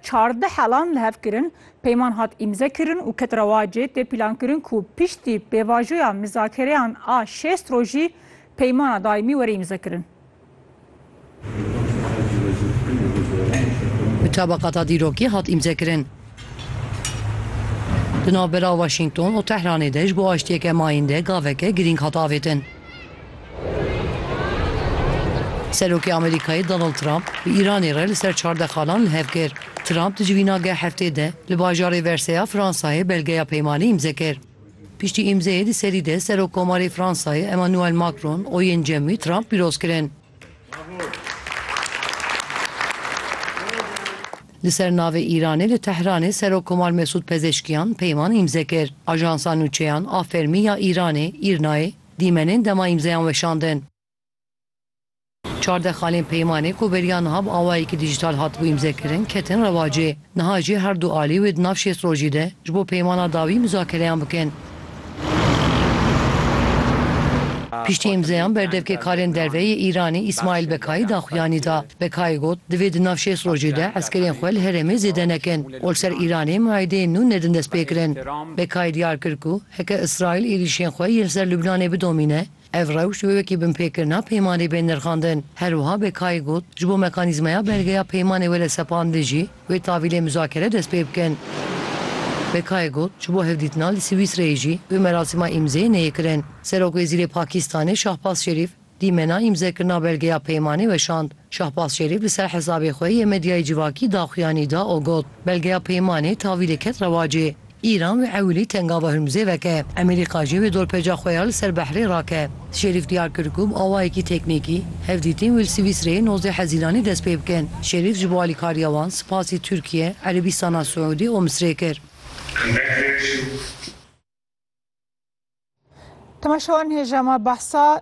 Çardeh helan li hev kirin, peyman hat îmze kirin û ket rewacê tê pîlankirin ku piştî pêvajoya mizakereyan a şêst rojî peymana daîmî were îmzekirin. Bi tabaqata dîrokî hat îmzekirin. Di navbera Washington û Tehranê de ji bo aştiyeke mayînde gaveke girîng hat avêtin. Serokê Amerîkayê Donald Trump bi Îranê re li ser çardexanan li hev kir. Trump di civînageh heftê de li bajarê Versailles ya Fransayê belgeya peymanê îmze kir. Piştî îmzeyê di serî de Serokkomarê Fransayê Emmanuel Macron û yên cem wî Trump pîroz kirin. Li ser navê Îranê li Tehranê Serokkomal Mesûd Pezeshkiyan peyman îmze kir. Ajansa nûçeyan a fermî ya Îranê, Îrnayê, dîmenên dema îmzeyan weşandin. Çardexalên peymanê ku beriya niha bi awayekî dîjîtal hatibû îmzekirin, ketin rewacê. Niha jî her du alî wê di nav şêst rojî de ji bo peymana dawî muzakereyan bikin. Piştî îmzeyan berdevkêkarên derve yê Îranê Îsmaîl Bekayî daxuyanî da. Bekayî got, Divê di nav şêst rojî de eskerên xwe li herêmê zêde nekin û li ser Îranê muaîdeyên nû nedin destpêkirin. Bekayî diyar kir ku heke Îsraîl êrîşên xwe yên li ser Lubnanê bidomîne, Ev rewş wê wekî binpêkirina peymanê bên nirxandin. Her wiha Bekai got, ji bo mekanîzmaya belgeya peymanê wele sepandin jî, wê tavîlê muzakere dest pê bikin. Bekai got, ji bo hevdîtina li Swîsreyê jî wê merasîma îmzeyê neyê kirin. Serok Wezîrê Pakistanê Şahbaz Şerîf dîmena îmzekirina belgeya peymanê weşand. Şahbaz Şerîf li ser hesabê xwe yê medyayê civakî daxuyanî da û got, Belgeya peymanê tavîlê ket rewacê. Îran wê ewilî Tengava Hurmuzê veke. Amerîka jî wê dorpêca xwe ya li ser behrê rake. Şerîf diyar kir ku bi awayekî teknîkî hevdîtin wê li Swîsreyê nozdeh Hezîranê dest pê bikin. Şerîf ji bo alîkariya wan spasî Tirkiye, Erebîstana Siûdî û Misrê kir. Temaşewan hêja me behsa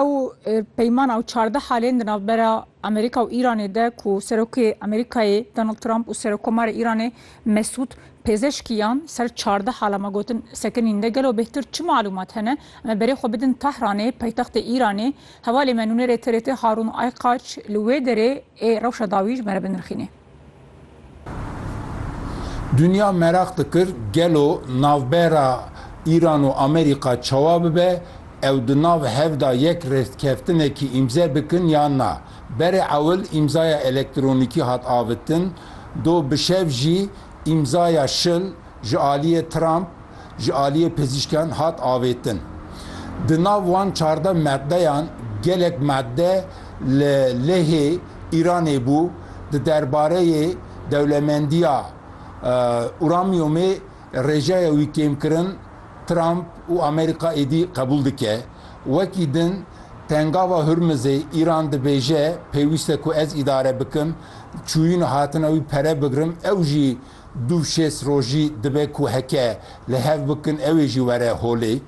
ew peymana û çardeh halên di navbera Amerîka û Îranê de ku Serokê Amerîkayê Donald Trump û Serokomarê Îranê Mesûd Pêzeşkiyan ser çardeh hala me gotin sekinîn de gelo bêhtir çi malûmat hene em ê berê xwe bidin Tehranê paytextê Îranê hevalê me nûnerê TRT Harûn Ayqaç li wê derê ê rewşa dawî ji me re binirxînê. Dinya meraq dikir gelo navbera Îran û Amerîka çawa bibe, ew di nav hev de yek rêzkeftinekî îmze bikin yan na. Berê ewil îmzaya elektronîkî hat avitin, do bi şev jî îmzaya şil, ji aliyê Trump ji aliyê pizîşkan hat avêtin. Di nav wan çardeh maddeyan gelek madde li lehê Îranê bû, di derbareyê dewlemendiya uramyumê rêjeya wî kêmkirin Trump û Amerîka êdî qebûl dike. Wekî din Pengava Hurmizê Îran dibêje pêwîste ku ez îdare bikim, çûyîn û hatina wî pere bigirim, ew jî Du şêst rojî dibe ku heke li hev bikin ew ê jî were holê.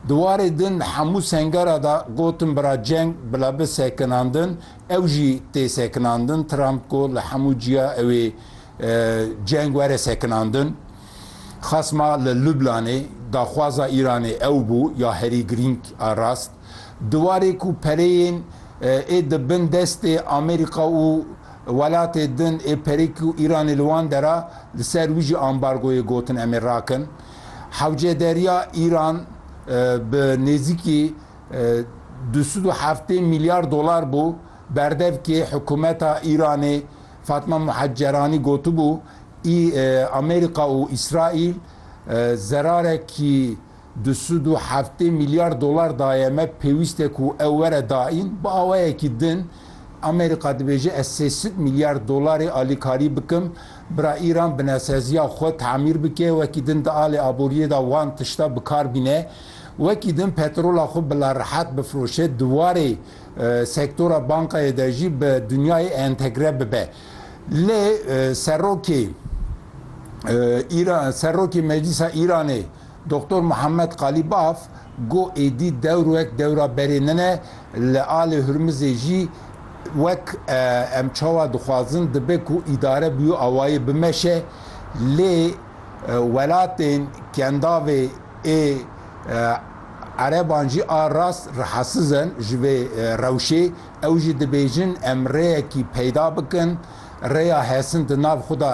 Di warê din li hemû sengera de gotin bira ceng bila bi sekinandin, ew jî tê sekinandin. Trump got li hemû ciya ew ê ceng were sekinandin. Xasma li Lublanê daxwaza Îranê ew bû ya herî girîng a rast. Di warê ku pereyên ê di bin destê Amerîka û welatê din ê perê ku Îranê li wan der a, li ser wî jî ambargoyê gotin em ê rakin. Hewcederiya Îran bi nêzîkî du sed û heftê mîlyar dolar bû berdevkê hikûmeta Îranê. Fatma Muhecceranî gotibû, Amerîka û Îsraîl zerarekî Di sud û heftê milyar dolar daye me, pêwîst e ku ew were daîn. Bi awayekî din Amerîka dibêje ez sê sud milyar dolarê alîkarî bikim. Bira Îran binesaziya xwe tamîr bike, wekî din di alê aboriyê de wan tişta bi kar bîne. Wekî din petrola xwe bila rihet bifiroşe, di warê sektora bankayê de jî bi dinyayê entegre bibe. Lê serokê Îran, serokê Meclîsa Îranê, Doktor Muhammed Qalîbaf got êdî dewr wek dewra berê min e, li alê Hurmizê jî wek em çawa dixwazin dibe ku îdare bi wî awayî bimeşe lê welatên kendavê ê ereban jî a rast rehasiz in ji vê rewşê. Ew jî dibêjin em rêyekî peyda bikin, rêya hesin di nav xwe de